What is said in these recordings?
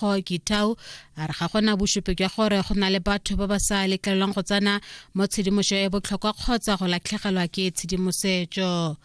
Kho Kitau a re ga gona bosupi jwa gore go na le batho ba ba sa letlelelwang go tsena mo tshedimoso e botlhokwa kgotsa go latlhegelwa ke tshedimosetso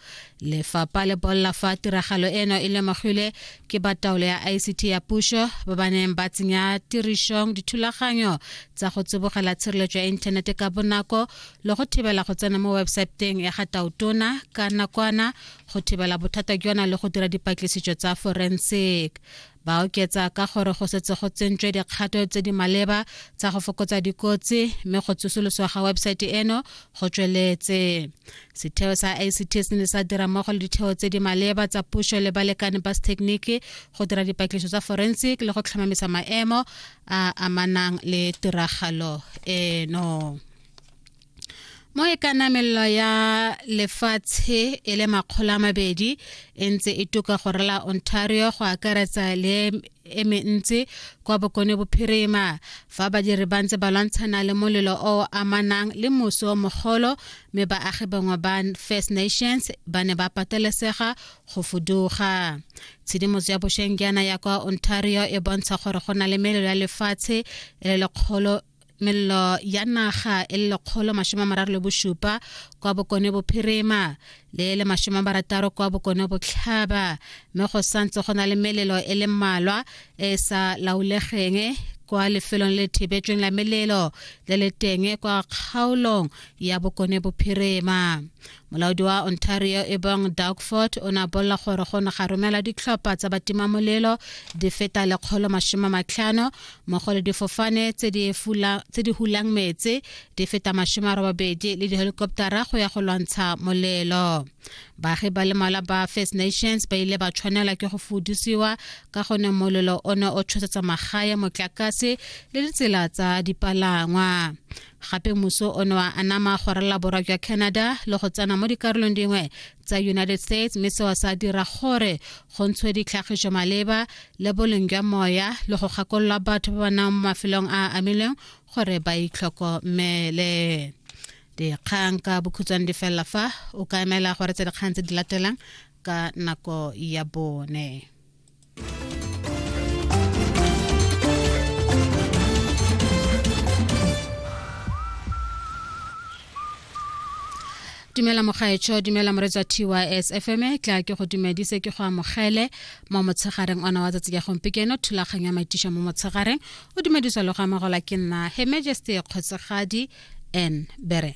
lefapha le bolla fa tiragalo eno e lemogilwe ke ba taolo ya ict ya puso ba ba neng ba tsenya tirisong dithulaganyo tsa go tsibogela tshireletso ya inthanete ka bonako le go thibela go tsena mo websaeteng ya ga tautona ka nakwana go thibela bothata jona le go dira dipatlisiso tsa forensic Ba oketsa ka gore go setse go tsentswe dikgato tse di maleba tsa go fokotsa dikotsi mme go tsosoloswa ga webesaete eno go tsweletse. Setheo sa ICT se ne sa dira mmogo le ditheo tse di maleba tsa puso le balekane ba sethekeniki go dira dipatlisiso tsa forensic le go tlhomamisa maemo a amanang le tiragalo eno. mo e ka namelelo ya lefatshe e le makgolo a mabedi e ntse e tuka go rela ontario go akaretsa le e mentsi kwa bokone bophirima fa badiri ba ntse ba lwantshana le molelo o amanang le moso o mogolo mme baagi bangwe ba first nations ba ne ba patelesega go fuduga tshedimoso ya bosheng jaana ya kwa ontario e bontsha gore go na le melelo ya lefatshe e le lekgolo mello ya naga e le lekgolo masome a mararo le bosupa kwa bokone bophirima le le masome a marataro kwa bokone botlhaba mme go santse go na le melelo e le mmalwa e e sa laolegeng kwa lefelong le thibetsweng la melelo le le teng kwa kgaolong ya bokone bophirima molaodi wa ontario e bong dagford o ne a bolela gore go ne ga romela ditlhopha tsa batimamolelo di feta lekgolo masome matlhano mmogo le difofane tse di hulang metse di feta masome a robabedi le dihelikoptara go ya go lwantsha molelo baagi ba le mala ba first nations ba ile ba tshwanela ke go fudisiwa ka gone molelo o ne o tshosetsa magae motlakase le ditsela tsa dipalangwa gape muso o ne wa anama go rela borwa jwa canada le go tsena mo dikarolong dingwe tsa united states mme seo sa dira gore go ntshwe ditlhagiso maleba le boleng jwa moya le go gakolola batho ba ba nang mo mafelong a a amilweng gore ba itlhokomele dikgang ka bokhutshwane di felela fa o ka emela gore tse dikgang tse di latelang ka nako ya bone dumela mogaetsho dumela moretsa tys fm e tla ke go dumedise ke go amogele mo motshegareng ona wa tsatsi ya gompekeno thulaganyo ya maitiša mo motshegareng o dumedisa le go amogelwa ke nna he majesty kgotsegadi n bere